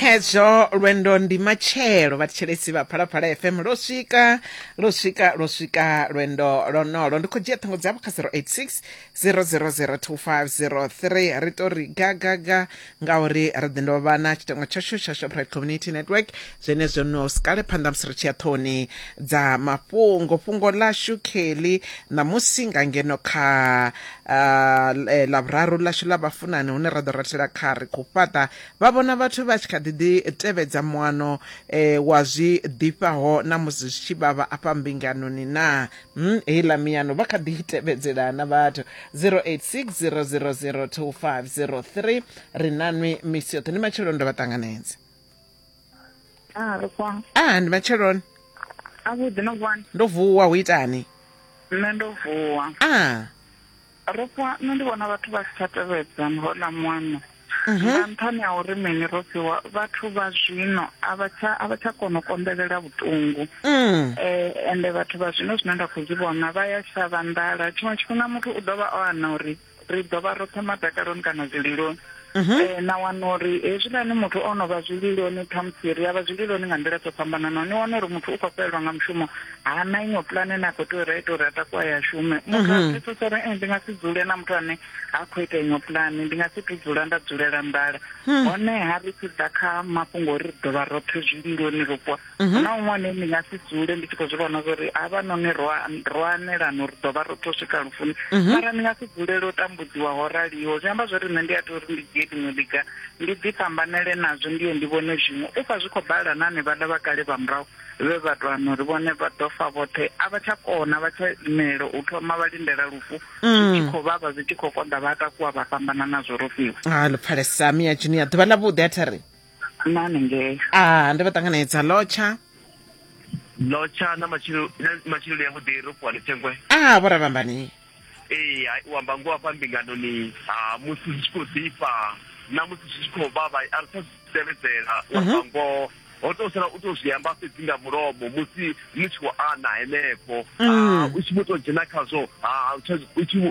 khezwo lwendo ndi matshelo vhathetshelesi vha phalaphala fm lwo swika lwo swika lwo swika lwendo lonolo ndi khou dzhia ṱhango dzavho kha 086 0002503 ri to ri gagaga ngauri ri ḓi ndo vha na tshitengo tshashu tsha shoprite community network zwenezwo no sikale phanḓa musi ri tshi ya ṱhoni dza mafhungo fhungo ḽashu kheli ṋamusi nga ngeno kha uh, ḽavhuraru ḽashu ḽa vhafunani hune ra ḓo ratela kha ri khou fhaṱa Vha vhona vhathu vha tshi kha ḓi ḓi tevhedza muano e wa zwi ḓifhaho na musi zwi tshi vhavha afha mbinganoni naa? Umm heiḽa miano vha kha ḓi i tevhedzelaa na vhathu? 0860002503 Ri na nwi misi yoṱhe. Ndi matsheloni ndo vha ṱanganedza. Ah, ri kwam. Ah, ndi matsheloni. A vhuḓi no vuwani? Ndo vuwa hu itani? Nṋe ndo vuwa. Ah. Rofhiwa, nṋe ndi vhona vhathu vha si tsha tevhedza hola muano mhm. nga nṱhani ha uri mini Rofhiwa vhathu vha zwino a vha tsha a vha tsha kona u konḓelela vhuṱungu mm. eh, ende vhathu vha zwino zwine nda khou zwi vhona vha ya shavha nḓala tshiṅwe tshifhinga muthu u ḓo vha o ana uri ri ḓo vha roṱhe madakaloni kana zwililoni mhm. eh, na wana uri hezwiḽani muthu o no vha zwililoni khamusi ri a vha zwililoni nga nḓila dzo fhambananaho ni wana uri muthu u khou fhelelwa nga mushumo ha na iṅwe pulane ne a khou tea uri a ite uri a takuwa ya shume mhm. muthu a pfesesa uri eh, ndi nga si dzule na muthu ane ha khou ita iṅwe pulane ndi nga si tu dzula nda dzulela nḓala hmm. honeha ri tshi ḓa kha mafhungo uri ri ḓo vha roṱhe zwililoni ro mhm. na un'wana ni nga si dzule ndi tshi khou zwi vhona zwa uri havha noni ro anelana uri ḓo vha ro to swika lufuni mhm. mara ni nga si dzulele u tambudziwa ho raliho zwi amba zwa uri nṋe ndi a tea uri ndi dzhie ḽiṅwe ḽiga ndi ḓi fhambanele nazwo ndi ye ndi vhone zwiṅwe u pfa zwi khou bala na ane vhaḽa vha kale vha murahu vhe vha to ano ri vhone vha ḓo fa vhoṱhe a vha tsha kona vha tsha imela u thoma vha lindela lufu mm. zwi tshi khou vhavha zwi tshi khou konḓa vha takuwa vha fhambana nazwo ro fiwa ha ah, luphalesa miya junia ḓuvha ḽa vhuḓi a thari na hanengei a ndi vha ṱanganedza lotsha lotsha na matshilo na matshiloni ya vhuḓi ro fhiwa lithengwe a vho ravhambani ee hai, u amba ngoho afha mbinganoni ha musi zwi tshi khou ḓifha na musi zwi tshi khou vhavha a ri tsha zwi tevhedzela u amba ngoho ho tou sala u tou zwi amba fhedzi nga mulomo musi ni tshi khou ana henefho Ah, u tshi vho tou dzhena khazwo ha u tsha u tshi vho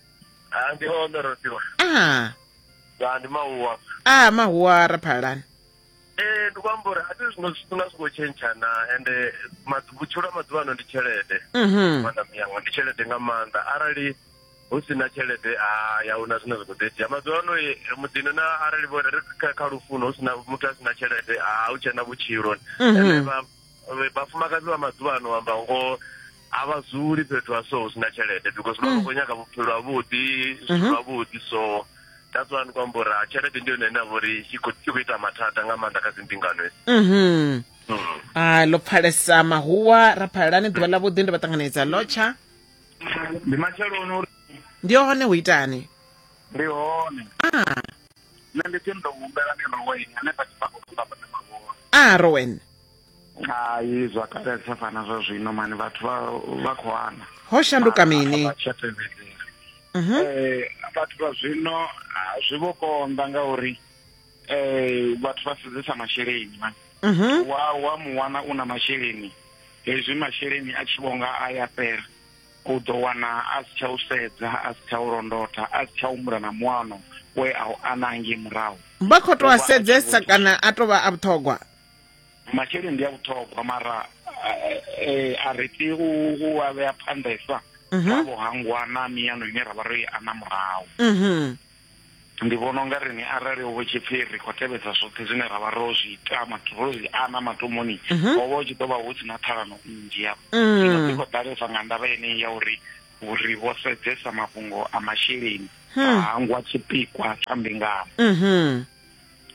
ha ndi hone ro tiwa a ya ndi mahuwa a mahuwa ra phalani ee ndi kwamba uri a ti zwino zwifuna zwi khou tshentshana ende madzu- vhutshilo ha maḓuvha ano ndi tshelede mhm maḓa miyanga ndi tshelede nga maanḓa arali hu si na tshelede a ya huna zwine zwa khou ḓo itea maḓuvha ano eh, muḓini na arali vho ri kha- kha lufuno hu si na muthu a si na tshelede a hu tshena vhutshilo Mhm. Ende vha- vhafumakadzi vha maḓuvha ano amba ngoho a vha dzuli fhethu ha so hu sina tshelede because vha vha khou nyaga vhupfhelo havhuḓi zwithu Mhm. zwavhuḓi so that's why ndi khou amba uri ha tshelede ndi yone ine ya vha uri i khou i khou ita mathada nga maanḓa kha dzimbingano hedzi mhm Mm. a ḽo pfalesa mahuwa ra phalelani ḓuvha ḽa vhuḓi ndi vha ṱanganedza lotsha ndi matsheloni uri ndi hone hu itani ndi hone a nṋe ndi tshi ndo humbela miroweni hanefha tshifhakoamba a rowen hai zwa kale sa fana zwa zwino mani vhathu vha khou ana ho shanduka mini mhm. eh, vhathu vha zwino ah, zwi vho konḓa ngauri um vhathu vha sedzesa masheleni mani mhm. wa wa mu wana u na masheleni hezwi masheleni a tshi vhonga a ya fhela u ḓo wana a si tsha u sedza a si tsha u londotha a si tsha humbula na muano we a u anangi murahu vha khou tou a sedzesa kana a tou vha a vhuṱhogwa masheleni ndi a vhuṱhogwa mara eh, a ri tea u a vhea phanḓesa mhm. kha vhuhangwa na miyano ine ra vha ro i ana murahu mhm. ndi vhona unga rini arali ovo tshi pfi ri khou tevhedza zwoṱhe zwine ra vha ro zwi ita ro zwi ana matomoni mhm. ho vha u tshi ḓo vha hu si na ṱhalano nnzhi yavho mm. ino ḓi khou ḓalesa nga ndavha yeneyi ya uri uri vho sedzesa mafhungo a masheleni hmm. a hangwa tshipikwa tsha mbingano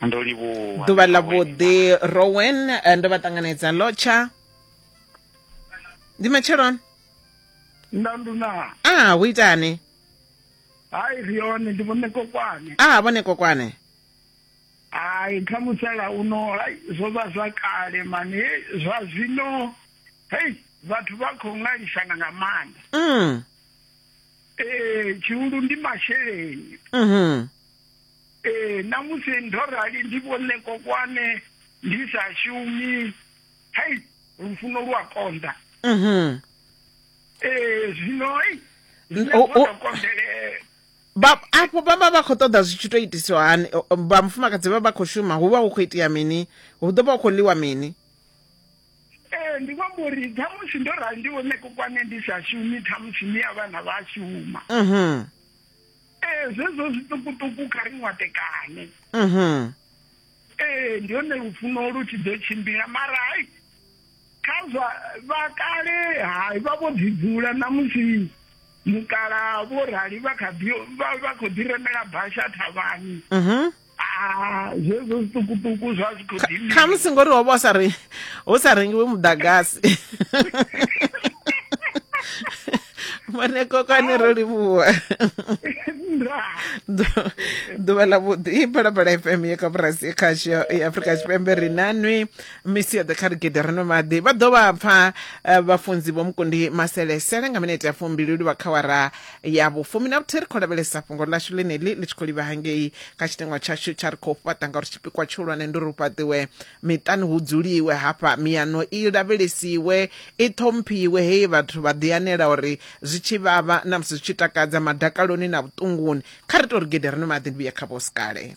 ndo livhuwa ḓuvha ḽa vhuḓi rowen eh, ndo vha ṱanganedza lotsha ndi matsheloni ndanduna a ah, hu itani hai ri yone ndi vhone kokwane a ah, vhone kokwane hai kha musala uno hai zwo vha zwa kale mani zwa zwino hei vhathu vha khou ṅwalisana nga maanḓa mm. ee eh, tshihulu ndi masheleni mm -hmm. Ee, na musi ndo rali ndi vhone kokwane ndi sa shumi. Hei, lufuno lu a konḓa. Mhm. Ee, zwino ei, zwine O- o- zwo tou konḓele- ba afho vha vha vha khou ṱoḓa zwi tshi tou itiswa hani O- o, vha mufumakadzi vha vha khou shuma hu vha hu khou itea mini hu ḓo vha hu khou ḽiwa mini Ee, ndi khou amba uri ṱhamusi ndo rali ndi vhone kokwane ndi sa shumi ṱhamusi ni a vhana vha shuma. Mhm. ee eh, zwezwo zwiṱukuṱuku kha ri ṅwatekane mhm. ee eh, ndi hone lufuno lu tshi ḓo tshimbila mara hai kha zwa vha kale hai vha vho ḓi dzula na musi mukala vho rali vha kha ḓi vha khou ḓi remela basha thavhani mhm. ah, zwezwo zwiṱukuṱuku zwa zwi khou dini khamusi ngori wa vha sa re hu sa rengiwe muḓagasi mane kokwane ro livhuwa ḓuvha ḽa vhuḓi i phalaphala fm ye kha burasi ye khasho ya afurika tshipembe ri na nwi misi yoḓhe kha rigede ri no maḓi vha ḓo vha pfa eh, vhafunzi vho mukundi maselesele nga minete ya fumbiluli vha khawara ya vhufumi na vhuthihi ri khou lavhelesa fhungo ḽashu ḽeneḽi ḽi tshi khou livha hangei kha tshitengwa tshashu tsha ri khou fhaṱa ngauri tshipikwa tshihulwane ndi uri hu fhaṱiwe miṱani hu dzuliwe hafha miyano i lavhelesiwe i ṱhomphiwe hei vhathu vha ḓianela uri zwi tshi vhavha na musi zwi tshi takadza madakaloni na vhuṱunguni kha ri tou ri gede ri nwe maḓi ndi vhuye kha vhosikale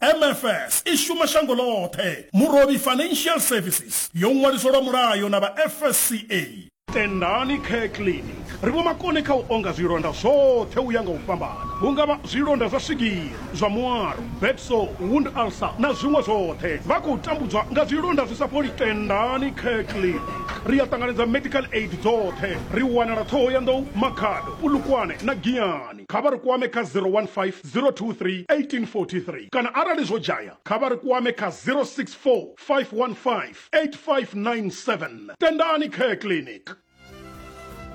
MFS i shuma shango ḽoṱhe. Murovhi Financial Services yo ṅwaliswa lwa mulayo na vha FSCA. Tendani Care Clinic ri vhomakone kha u onga zwilonda zwoṱhe u ya nga u fhambana, hu nga vha zwilonda zwa swigiri, zwa muaro, bed sore, wound ulcer na zwiṅwe zwoṱhe. Vha khou tambudzwa nga zwilonda zwi sa fholi? Tendani Care Clinic ri a ṱanganedza medical aid dzoṱhe. Ri wanala Ṱhohoyanḓou, Makhado, Polokwane na Giyani. kha vha ri kwame kha 015 023 1843 kana arali zwo dzhaya kha vha ri kwame kha 064 515 8597. Tendani Care Clinic.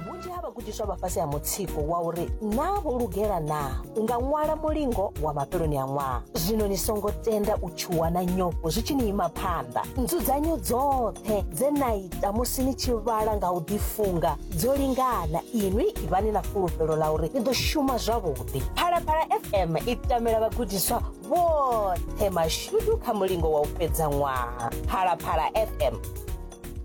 Vhunzhi ha vhagudiswa vha fhasi ha mutsiko wa uri naa vho lugela naa u nga ṅwala mulingo wa mafheloni a ṅwaha. Zwino ni songo tenda u tshuwa na nyofho zwi tshi ni ima phanḓa. Nzudzanyo dzoṱhe dze na na musi ni tshi vhala nga u ḓifunga dzo lingana inwi ivhani na fulufhelo ḽa uri ni ḓo shuma zwavhuḓi phalaphala fm i tamela vhagudiswa vhoṱhe mashudu kha mulingo wa u fhedza ṅwaha phalaphala fm